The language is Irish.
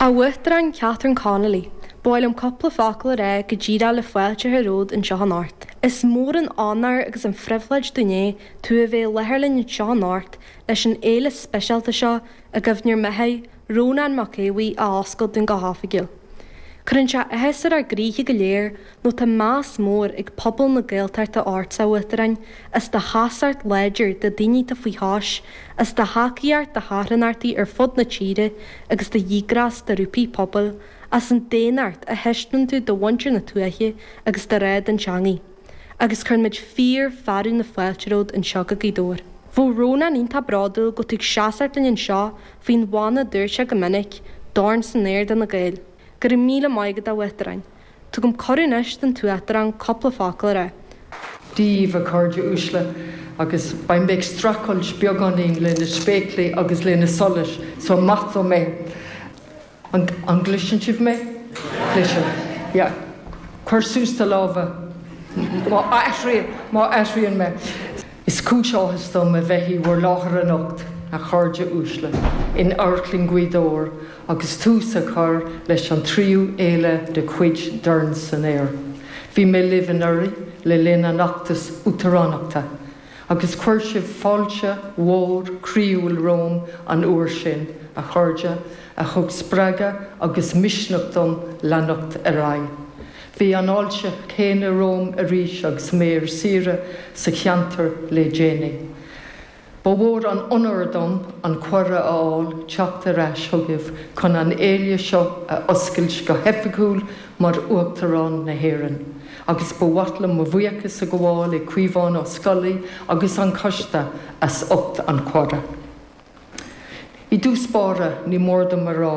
A Uachtaráin Catherine Connolly, ba mhaith liom cúpla focal a rá go díreach le fáilte a chur romhat anseo anocht. Is mór an onóir agus an phribhléid dúinn é tú a bheith i láthair linn anseo anocht leis an fhéile speisialta seo i gcuimhne ar mo chara, Rónán Mac Aodha Bhuí a oscailt dúinn go hoifigiúil. Cuireann sé áthas ar ár gcroíthe go léir Nó tá meas mór ag pobal na Gaeltachta ort, a Uachtaráin, as do sheasacht láidir do daoine atá faoi chois, as do thacaíocht do charthanachtaí ar fud na tíre agus do dhíograis do ghrúpaí pobail, as an daonnacht a thaispeánann tú do mhuintir na tuaithe agus do ghrá don teangaidh. Agus cuireann muid fíor fearadh na fáilte romhat anseo go Gaoth Dobhair. Bheadh Rónán iontach bródúil go bhfuil tú ag seasacht linn anseo faoin mhana a dúirt sé go minic, dorn san aer do na Gaeil. Go raibh míle maith agat, a Uachtaráin. Tugaim cuireadh anois don tUachtarán cúpla focal a rá. díbh, a chairde uaisle, agus beidh mé ag streachailt beagáinín le na spéaclaí agus le na solais, so maith dom é. An, an gcloiseann sibh mé? Cloisim. Yeah. Cuir suas do lámha má athraíonn, má athraíonn mé. Is cúis áthais dom a bheith i bhur láthair anocht, a chairde uaisle, in Amharclann Ghaoth Dobhair agus tús a chur leis an tríú fhéile de chuid Dorn san Aer. Bhí mé libh anuraidh le linn an fheachtais uachtaránachta agus chuir sibh fáilte mhór chroíúil romham an uair sin, a chairde, a thug spreagadh agus misneach dom leanacht ar aghaidh. Bhí an fháilte chéanna romham arís agus mé ar saoire sa cheantar le déanaí. Ba mhór an onóir dom an cuireadh a fháil teacht ar ais chugaibh chun an fhéile seo a oscailt go hoifigiúil mar Uachtarán na hÉireann, agus ba mhaith liom mo bhuíochas a ghabháil le Caomhán Ó Scolaí agus an Coiste as ucht an chuireadh. I dtús báire, ní mór dom a rá,